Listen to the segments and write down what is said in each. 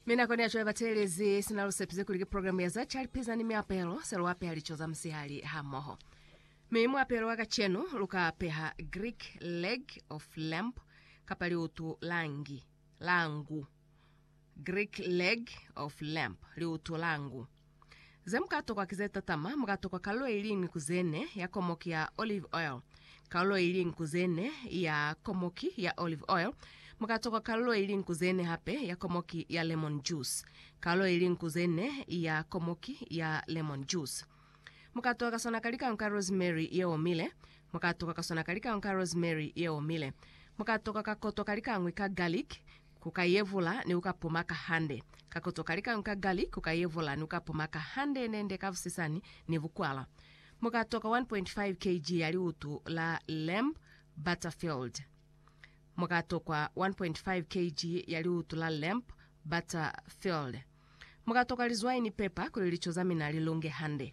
Mi nakoni yaco ya batelezi sina lusepise kuli ki programu ya za calipiza ni miapelo se luapeha lico za musihali hamoho. Mi muapelo wa kacenu luka apeha Greek leg of lamb kapa liutu la ngi, la ngu. Greek leg of lamb, liutu la ngu. Ze mu ka tokwa ki ze tatama, mu ka tokwa kalulo i liñwi ku ze ne ya komoki ya olive oil, kalulo i liñwi ku ze ne ya komoki ya olive oil, mu ka tokwa kalulo i liñwi ku ze ne hape ya komoki ya lemon juice, kalulo i liñwi ku ze ne ya komoki ya lemon juice. Mu ka tokwa ka sona ka likañwi ka rosemary ye omile, mu ka tokwa ka sona ka likañwi ka rosemary ye omile, mu ka tokwa ka koto ka likañwi ka garlic, Ku ka yevula ni ku ka pumaka hande. Ka koto ka lika nka gali ku ka yevula ni ku ka pumaka hande nende ka busisani ni bukwala. Mu ka toka 1.5 kg ya liutu la lamb butterfield. Mu ka tokwa 1.5 kg ya liutu la lamb butterfield. Mu ka toka lizwai ni pepa kuli lico za mina li lunge hande.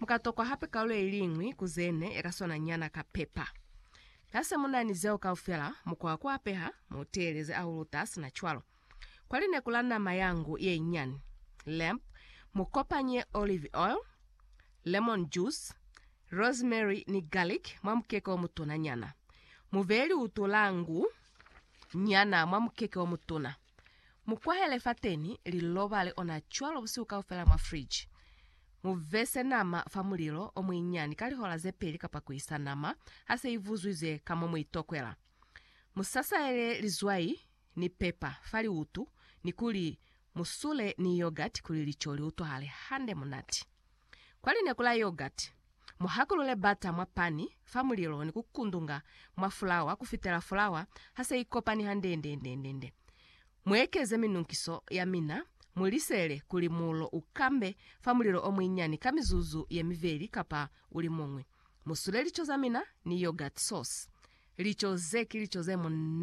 Mu ka tokwa hape kalu ye liñwi ku ze ne ya ka swana nyana ka pepa. Ha se mu na ni zeo kaufela, mu kwa ku apeha, mu teeleze a uluta sina cwalo. Kwa lineku la nama ya ngu ye nyani, lamb, mu kopanye olive oil, lemon juice, rosemary ni garlic mwa mukeke o mutuna nyana. Mu beye liutu la ngu nyana mwa mukeke o mutuna. Mu kwahele fateni, li lobale ona cwalo busihu kaufela mwa friji. Mu vese nama fa mulilo o muinyani ka lihola ze peli kapa ku isa nama ha se i vuzwizwe ka mo mu i tokwela. Mu sasayele lizwai ni pepa fa liutu ni kuli mu sule ni yogurt kuli lico li utwahale hande munati. Kwa lineku la yogurt, muhakulule butter mwa pani fa mulilo ni kukundunga mwa fulawa kufitela fulawa ha se ikopani handeendeendeendende. Muekeze minunkiso ya mina, mulisele kuli mulo ukambe fa mulilo omuinyani ka mizuzu yemiveli kapa ulimuñwi. Musule lico zamina ni yogurt sauce. Lico ze ki lico zemunate!